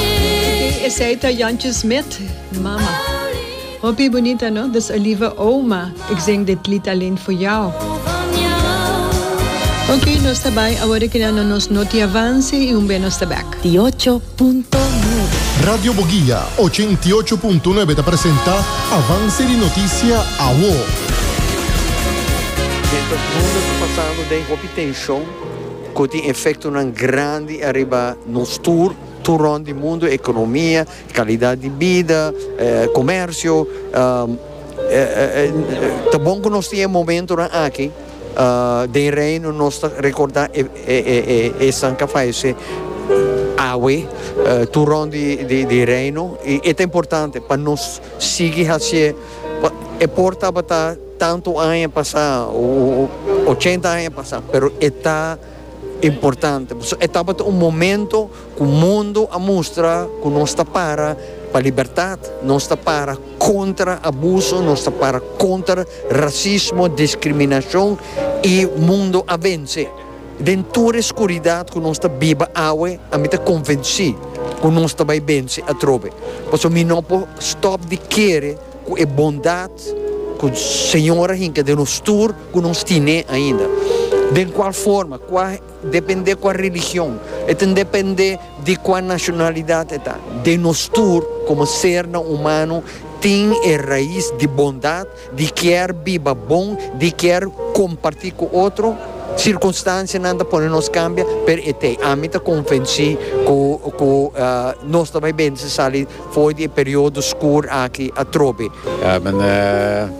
Ok, esey ta Jantje Smit, Mama. Hopi bunita no, dis Oliva Ouma ik zing dit lied alleen voor jou. Ok, nos ta bai awor keda na nos noti avance y un be nos ta back. Di ocho punto nuebe. Radio Boguia ochenta i ocho punto nuebe ta presenta Avance di Noticia awor. Mientras mundo ta pasando den hopi tension cu tin efectonan grandi ariba nos tur. Tur rond di mundu, ekonomia, kalidat di bida, komersio, ta bon ku nos tin e momentunan aki den Reino, nos ta rekordá e san ka fayesé awe tur rond di Reino, i e ta importante pa nos sigui hasié, pa e por tabata tantu aña pasá, ochenta aña pasá, pero e ta. importante. Pasobra e tabata un momento ku mundu a mustra ku nos ta para pa libertat, nos ta para kontra abuso, nos ta para kontra rasismo, diskriminashon i mundu a vense. Den tur e skuridat ku nos ta biba awe, ami ta konvensí ku nos ta bai vense atrobe. Pasobra mi no por stòp di kere ku e bondat ku Señor a hinka den nos tur. ku nos tine ainda. Den kua forma, kua depende kua religion, e tin depende di kua nashonalidat e ta. Den nos tur komo sernan humano tin e rais di bondat, di kier biba bon, di kier komparti ku otro. Sirkunstansianan ta pone nos kambia, pero e t'ei. Ami ta konvensí ku ku nos ta bai bendisí sali for di e periodo skur aki atrobe.